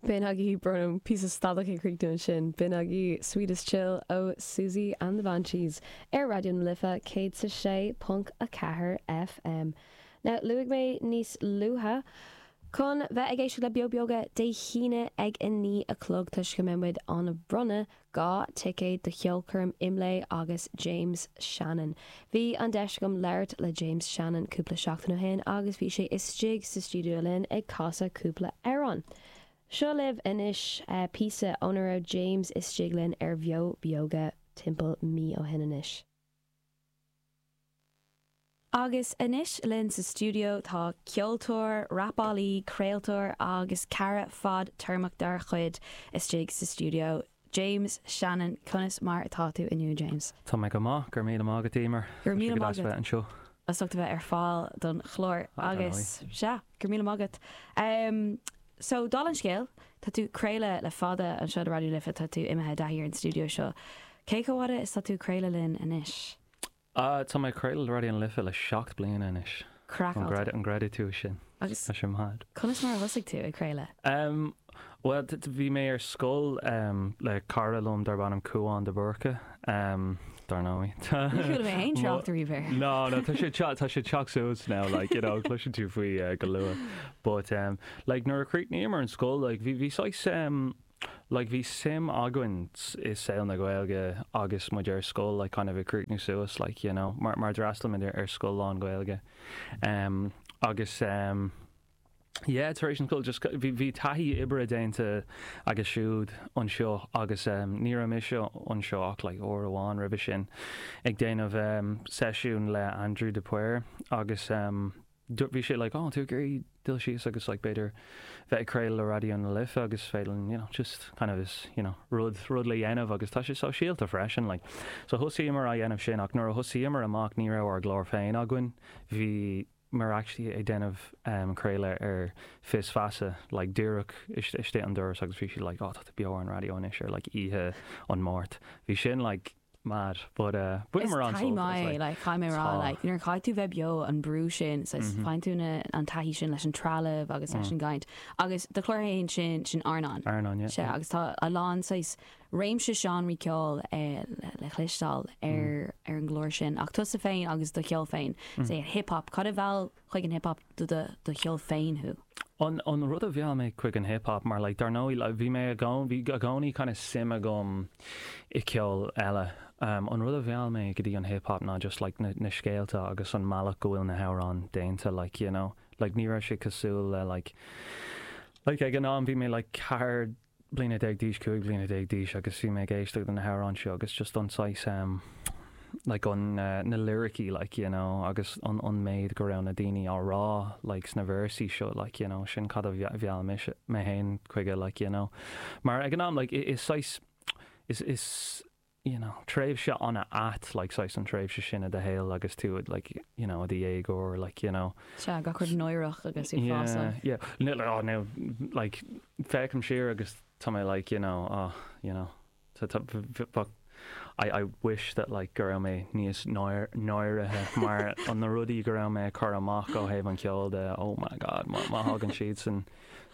B'in agaibh, brón orm, píosa stadach ag críochnú ansin, b'in agaibh Sweetest Chill ó Siouxsie and the Banshees ar Raidió na Life 106.4 FM. Now, luaigh mé níos luaithe, chun bheith ag éisteacht le Beo Beoga Dé hAoine ag a naoi a chlog toisc go mbeidh muid in ann bronnadh 2 ticéad do cheolchoirm Imlé agus James Shannon. Bhí an deis agam labhairt le James Shannon cúpla seachtain ó shin agus bhí sé istigh sa stiúideo linn ag casadh cúpla amhrán. Seo libh anois píosa óna raibh James istigh linn ar Bheo Beoga timpeall mí ó shin anois. Agus anois linn sa stiúideo tá ceoltóir, rapálaí, craoltóir agus cara fadtéarmach dár gcuid istigh sa stiúideo, James Shannon. Conas mar atá tú inniu, James? Tá mé go maith, go raibh míle maith agat, Eimear. Go raibh míle maith agat. Tá sé go deas a bheith anseo. as ucht a bheith ar fáil don chlár Aye, dar agus ndóigh. sea, go raibh míle maith agat. Em, so, dála an scéil, tá tú ag craoladh le fada anseo do Raidió na Life, tá tú imithe i dtaithí ar an stiúideo seo. Cé chomh fhada is tá tú ag craoladh linn anois? Ah, tá mé ag craoladh le Raidió na Life le seacht bliana anois. Craiceáilte. An gcreidfidh tú sin? Agus. Tá sé mad. Conas mar a thosaigh tú ag craoladh? Em, bhuel, t, t, bhí mé ar scoil, em, le cara liom darb ainm Cúán de Búrca, em, dar ndóigh. Tá. Ní chuala mé aon trácht ariamh air. No, no, tá sé, tá sé teacht suas now, like, you know, cloiseann tú faoi, eh, go luath. But, em, like, nuair a chríochnaíomar an scoil, like, bhí, bhí saghas, em, like bhí suim againn i saol na Gaeilge agus muid ar scoil like kind of ag críochnú suas like you know mar mar d'fhreastail muid ar ar scoil lán-Ghaeilge em agus em yeah tar éis an scoil just bhí bhí taithí oibre déanta aige siúd anseo agus em ní raibh mise anseo ach like uair amháin roimhe sin ag déanamh em seisiún le Aindriú de Paor agus em Do bhí sé like, oh tú ag iarraidh dul síos agus like b'fhéidir bheith ag craoladh le Raidió na Life agus féadfainn, you know, just kind of is, you know, rud, rud le dhéanamh agus tá sé sóisialta freisin like. So thosaíomar á dhéanamh sin ach nuair a thosaíomar amach ní raibh ár gclár féin againn, bhíomar actually ag déanamh um craoladh ar Fios Feasa like díreach istigh an doras agus bhí siad like, oh tá tú beo ar an raidió anois ar like oíche an Máirt. Bhí sin like, mad but eh, bhíomar ann so it's like. like caithfidh mé a rá Tá. like nuair a chaithfidh tú bheith beo an brú sin so is faigheann tú na an taithí sin leis an trealamh agus leis an gcaint agus do chláir fhéin sin sin Arnán Arnán, yeah, sé yeah. agus tá a lán saghas réimse seánraí ceoil eh, le le chlisteáil ar ar an gclár sin ach tusa féin agus do cheol féin is é hiphop cad a mheall chuig an hip hop do do cheol féin? An rud a mheall mé chuig an hip hop, mar like dar ndóigh like bhí mé i gcónaí, bhí i gcónaí kind of suim agam i ceol eile, an rud a mheall mé go dtí an hip hop ná just like na na scéalta agus an mbealach go bhfuil na hamhráin déanta like you know like ní raibh sé cosúil le like like ag an am bhí mé like ceithre bliana déag d'aois, cúig bliana déag d'aois agus bhí mé ag éisteacht le na hamhráin seo agus just an saghas like an eh na liricí like you know agus an an méid go raibh na daoine á rá like sna véarsaí seo like you know sin cad a mhe- mheall mé féin chuige like you know mar ag an am like i- is saghas is is you know, tréimhse an-ait, like, saghas an tréimhse sin i do shaol agus tú, like, you know, i do dhéagóir, like, you know. Sea, gach rud náireach agus ag fás. Yeah, yeah, oh, now, like, féachaim siar agus tá mé, like, you know, oh, you know, I wish that, like, go raibh mé níos náir, náirithe mar na rudaí go raibh mé ag cur amach ó thaobh an cheoil de, oh my God, má, má thagann siadsan,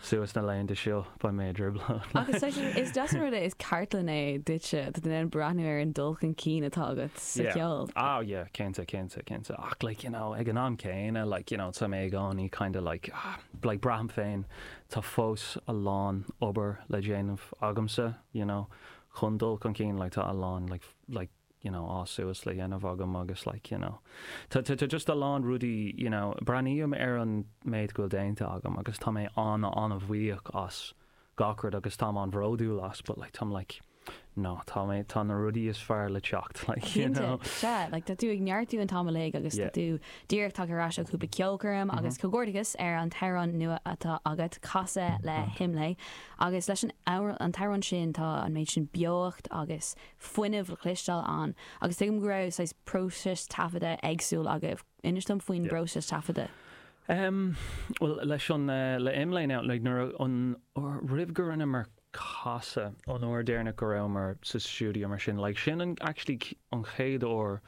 suas na laethanta seo, beidh mé i dtrioblóid. Agus freisin, is deas an rud é, is cartlann é duitse, tá tú in ann breathnú ar an dul chun cinn atá agat sa cheol. Yeah, ah yeah, cinnte, cinnte, cinnte, ach like, you know, ag an am céanna, like, you know, tá mé i gcónaí kinda like, ah, like braithim féin, tá fós a lán obair le déanamh agamsa, you know, chun dul chun cinn, like tá a lán like, like, you know, fás suas le dhéanamh agam agus like, you know, tá, tá, tá just a lán rudaí, you know, breathnaím ar an méid go bhfuil déanta agam agus tá mé an, an-bhuíoch as gach rud agus táim an-bhródúil as but like, táim like, no, tá mé, tá na rudaí is fearr le teacht like, you know. Cinnte, sea, like tá tú ag neartú an t-am uilig agus tá tú díreach tagtha ar ais ó chúpla ceolchoirm agus comhghairdeachas ar an t-amhrán nua atá agat, Casadh le hIMLÉ, agus leis an, an t-amhrán sin tá an méid sin beocht agus fuinneamh le cloisteáil ann. Agus tuigim go raibh saghas próiseas taifeadta éagsúil agaibh. Inis dom faoin bpróiseas taifeadta. Em, bhuel, leis an, eh, le IMLÉ now, like, nuair a, an uair, roimh go rinneamar casadh, an uair deireanach go rabhamar sa stiúideo mar sin, like, sin an, actually, an chéad uair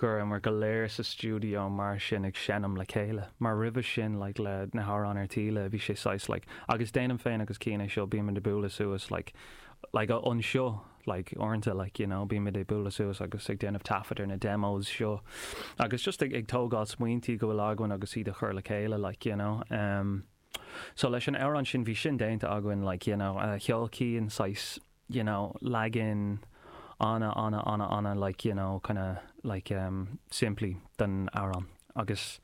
go rabhamar go léir sa stiúideo mar sin ag seinm le chéile, mar roimhe sin like le na hamhráin ar Taoille, bhí sé saghas like agus déanaim féin agus Cian é seo, bímid ag bualadh suas like like anseo like uaireanta like you know bímid ag bualadh suas agus ag déanamh taifead ar na demos seo agus just ag tógáil smaointí go bhfuil againn agus iad a chur le chéile like you know. So leis an amhrán sin, bhí sin déanta againn, like, you know, sheol Cian, saghas, you know, leagan ana, ana, ana, ana, like, you know, kind of, like, em, simplí den amhrán agus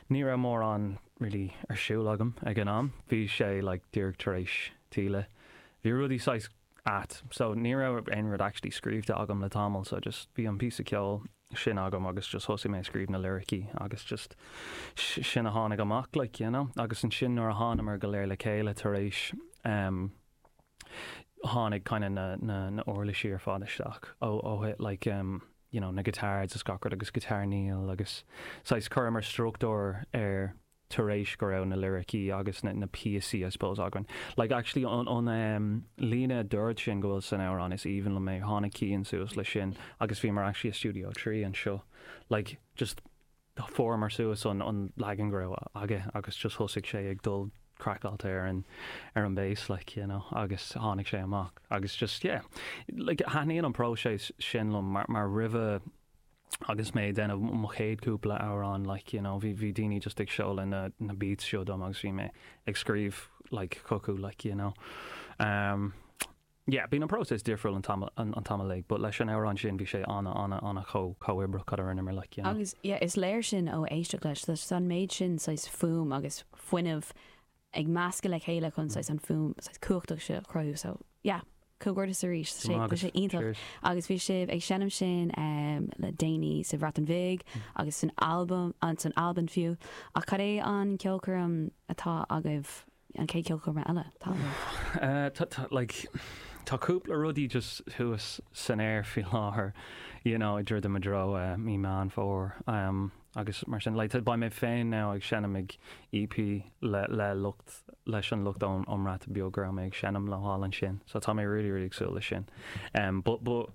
ní raibh mórán really ar siúl agam ag an am. Bhí sé, like, díreach tar éis Taoille. Bhí rudaí saghas at, so ní raibh aon rud actually scríbhte agam le tamall so just bhí an píosa ceoil sin agam agus just thosaigh mé ag scríobh na liricí agus just sin a tháinig amach like you know agus ansin nuair a thánamar go léir le chéile tar éis em tháinig kind of na na na uirlisí ar fad isteach ó ó thuit like em you know na guitars, gach rud agus guitar Neil agus saghas chuireamar struchtúr ar tar éis go raibh na liricí agus na na píosaí I suppose againn. Like actually an an ehm líne a úd sin go bhfuil san amhrán is aoibhinn liom é, tháinig Cian suas leis sin agus bhíomar actually i Studio 3 anseo like just chuireamar suas an an leagan go raibh aige agus just thosaigh sé ag dul craiceáilte ar an ar an bass like you know agus tháinig sé amach agus just yeah like thaitníonn an próiseas sin liom mar mar roimhe Agus mé ag déanamh mo chéad chúpla amhrán like you know bhí daoine just ag seoladh na na beats seo dom agus bhí mé ag scríobh like chucu like you know um yeah bíonn an próiseas difriúil an t-am an t-am uilig but leis an amhrán sin bhí sé ana ana ana chomh chomhoibríoch, a rinneamar like you know. Agus yeah is léir sin ó éisteacht leis, tá an méid sin saghas fuaim agus fuinneamh ag meascadh le chéile chun saghas an fuaim saghas cumhachtach seo a chruthú. So yeah, comhghairdeas arís, tá sé, tá sé iontach. Agus bhí sibh ag seinm sin le déanaí sa Bhreatain Bhig agus san Albain, sa san Albain fiú, ach cad é an ceolchoirm atá agaibh, an chéad ceolchoirm eile atá agaibh? Like, tá cúpla rudaí just thuas san aer faoi láthair, you know, i dtreo i dtreo, Mí Meán Fómhair. Agus mar sin, beidh mé féin now ag seinm ag EP le, le lucht, leis an lucht ón, ón mBreatain Beag go raibh mé ag seinm leo thall ansin. So tá mé really, really ag súil leis sin. Um but, but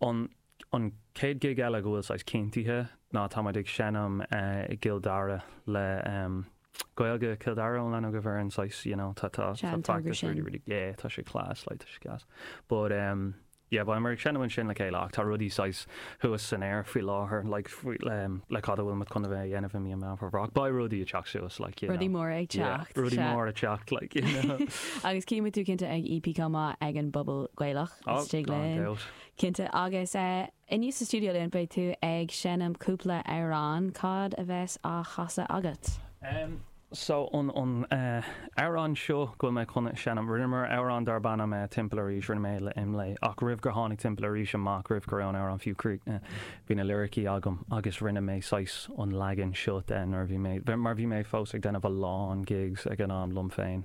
an, an chéad gig eile go bhfuil saghas cinntithe ná tá muid ag seinm eh i gCill Dara le um Gaeilge Chill Dara ón Leinster, foireann saghas, you know, tá, tá, tá practice really, really, yeah, tá sé class, like tá sé gas. But um. Yeah, beimid ag seinm ansin le chéile ach tá rudaí saghas thuas san aer faoi láthair, like, faoi, le cad a bhfuil muid chun a bheith a dhéanamh i mí an Mheán Fómhair? Ach beidh rudaí ag teacht suas, like, you know. Rudaí móra ag teacht, sea. Yeah, rudaí móra ag teacht, like, you know. Agus cífimid thú cinnte ag EP chomh maith ag an bPuball Gaeilge, Oh, istigh linn, no doubt. cinnte. Agus inniu sa stiúideo linn beidh tú ag seinm cúpla amhrán, cad a bheas á chasadh agat? so an an amhráin seo go bhfuil mé chun seinm. Rinneamar amhrán darb ainm Timpeall Arís, rinne mé le Imlé, ach roimh gur tháinig Timpeall Arís amach, roimh go raibh an amhrán fiú críochnaithe, bhí na liricí agam agus rinne mé saghas an leagan seo de nuair a bhí mé mar bhí mé fós ag déanamh a lán gigs ag an am liom féin.